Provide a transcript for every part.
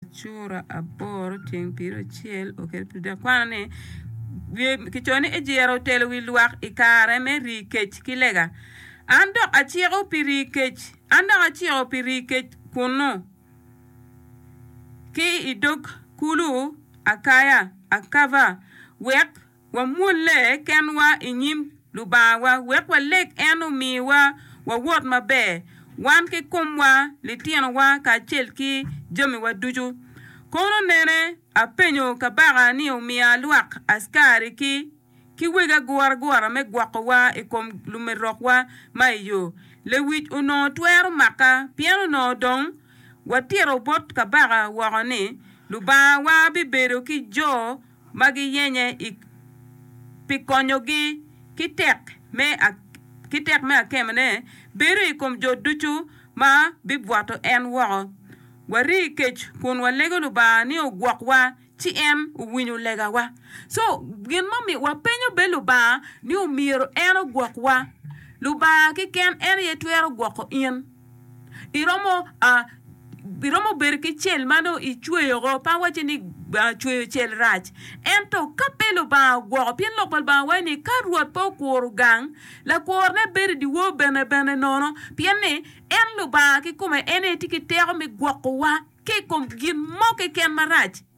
Cura aboro ceng piro acel oketo pi dek kwano ni kicoyo ni ejiro otelo wi lwak i kare me rii kec ki lega. An dok aciko pi rii kec, an dok aciko pi rii kec kunnu ki i dog kulu Akaya, Akava, wek Wamwolle kenwa i nyim Lubangawa wek waleg en omiwa wawot maber, wan ki komwa, litinowa kacel ki jamiwa ducu. Kono nene, apenyo kabaka ni omiya lwak askari-ki ki weg aguragura me gwokowa i kom lumerokwa ma i yo. Lewic onongo twero maka pien onongo dong watito bot kabaka woko ni Lubangawa bibedo ki jo ma giyenye pi konyogi ki tek me akemone bedo i kom jo ducu ma bibwato en woko. Wari i kec kun walego Lubanga ni ogwokwa ci en owinyo legawa. So, gin ma omiyo wapenyo bene Lubanga ni omyero en ogwokwa. Lubanga keken en aye twero gwoko in. iromo iromo bedo ki cel ma nongo icweyo woko pe awacci ni cweyo cel rac ento ka pe Lubanga ogwoko pien Lok pa Lubanga waco ni ka Rwot pe okuro gang lakurone bedo idyewor bene bene nono pien ni en Lubanga kikome en aye tye ki teko me gwokowa ki i kom gin mo keken marac.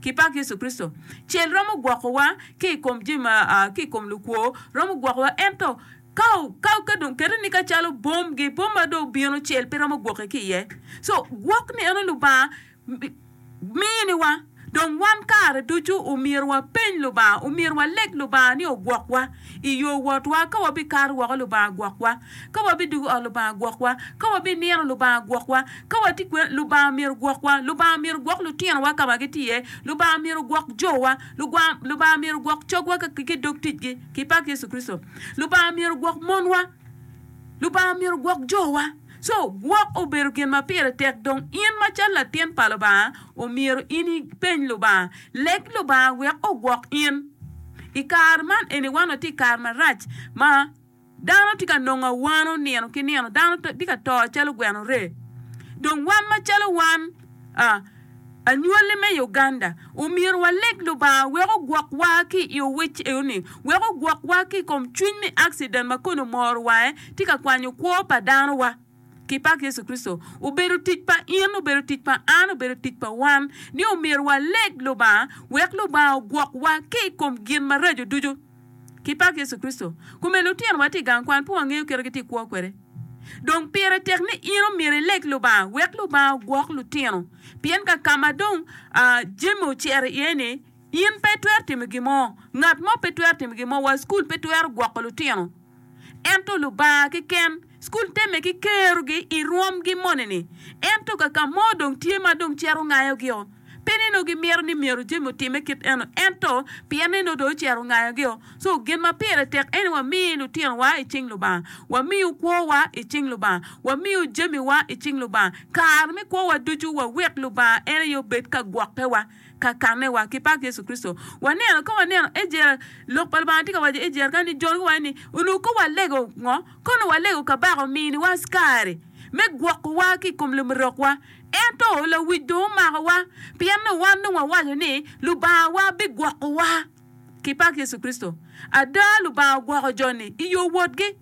Kipak Yecu Kricito! Cel romo gwokowa ki i kom jami ma a ki i kom lukwo, romo gwokowa. Ento, ka o, ka o, ka dong kete ni ka calo bom, gi bom ma dong obino, cel pe romo gwoki ki iye. So, gwok ni eno Lubanga mi, miniwa. Dong wan kare ducu omyero wapeny Lubanga, omyero waleg Lubanga ni ogwokwa i yo wotwa, ka wabikato woko Lubanga gwokwa. Ka wabidwogo ot Lubanga gwokwa. Ka wabinino Lubanga gwokwa. Ka watye kwena, Lubanga myero gwokwa. Lubanga myero gwok lutinowa ka ma gitye iye. Lubanga myero gwok jowa. Lubanga myero gwok cogwa ki dog ticgi, ki i pak Yecu Kricito. Lubanga myero gwok monwa. Lubanga myero gwok jowa. Co, gwok obedo gin ma pire tek. Dong in macalo latin pa Lubanga, omyero in ipeny Lubanga. Leg Lubanga wek ogwok in. I kare man eni wan watye i kare marac ma. Dano tye ka nongo awano nino ki nino, dano tye ka to calo gweno ree. Dong wan macalo wan, a, anywali me Uganda, omyero waleg Lubanga wek ogwokwa ki i owic eno-ni, wek ogwokwa ki i kom cwiny me accident ma koni omoro wange, tye ka kwanyo kwo pa danowa. Ki pak Yecu Kricito! Obedo tic pa in, obedo tic pa an, obedo tic pa wan ni omyero waleg Lubanga wek Lubanga ogwokwa ki i kom gin maraco ducu. ki pak Yecu Kricito. Kome lutinowa tye i gang kwan pud wangeyo kite gitye kwo kwede. Dong pire tek ni in omyero ileg Lubanga wek Lubanga ogwok lutino, pien ka ka ma dong jami ocito iye ni in pe itwero timo gin mo, ngat mo pe twero timo gin mo, wa i cukul pe twero gwoko lutino. ento Lubanga keken. Cukul temme ki kerogi i rwomgi moni-ni, ento ka ka mo dong tye ma dong cito ngayogio, pe ni nongo gimito ni myero jami otimme kit eno, ento pien ni nongo dong ocito ngayogio. So, gin ma pire tek en ni wami lutinowa i cing Lubanga, wamiyo kwowa i cing Lubanga, wamiyo jamiwa i cing Lubanga. Kare me kwowa ducu wawek Lubanga en aye obed ka gwokkewa. kakanewa ki pak Yecu Kricito. Waneno, ka waneno Ejer, Lok pa Lubanga tye ka waco Ejer kany ni, Jon giwaco ni, Onongo kong walego ngo? Kono walego kabaka ominiwa askari me gwokowa ki i kom lumerokwa. Ento lawic dong omakowa, pien ni wan dong wawaco ni, Lubangawa bigwokowa ki pak Yecu Kricito. Ada, Lubanga ogwoko jo-ni i yo wotgi.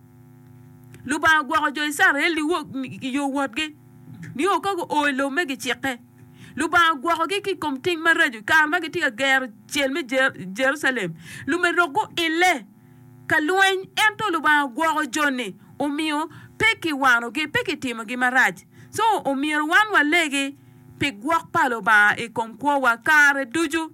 Lubanga ogwoko jo Icrael i yo wotgi nio ka guo i lobo me gicikke. Lubanga ogwokogi ki i kom tim maraco. I kare ma gitye ka gero cel me Jerucalem, lume dok guille ka lweny. Ento Lubanga ogwoko jo-ni, omiyo pe kiwanogi, pe kitimogi marac. Co, omyero wan walegi pi gwok pa Lubanga i kom kwowa kare ducu.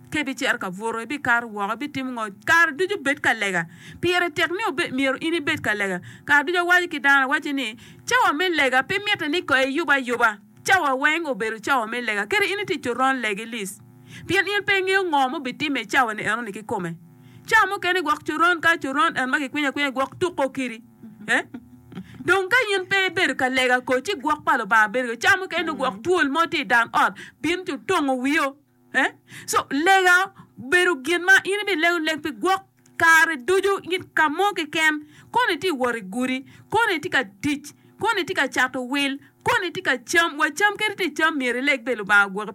Ka ibicito ka buto, ibikato woko, ibitimo ngo, kare ducu bed ka lega. Pire tek ni myero in ibed ka lega. Kare ducu awaco ki dano, awaco ni, Cawa me lega pe mitte ni koi eyub ayuba. Cawa weng obedo cawa me lega, kadi in itye coron legi lic, pien in pe ingeyo ngo ma obitimme i cawa-ni enoni kikome. Cawa mukene gwok coron kayo coron en ma kikwinyo akwinya gwok tuko kiri. Eh? Dong ka in pe ibedo ka lega kor ci gwok pa Lubanga bedo kede. Cawa mukene dong gwok twol mo tye i dan ot, bin ci otongo wio. Eh? So lega bedo gin ma in ibilego leg pi gwok kare ducu in ka mo keken, koni itye wot i gudi, koni itye ka tic, koni itye ka cato wil, koni itye ka cam, wa cam kadi ti cam myero ileg bene Lubanga ogwoki.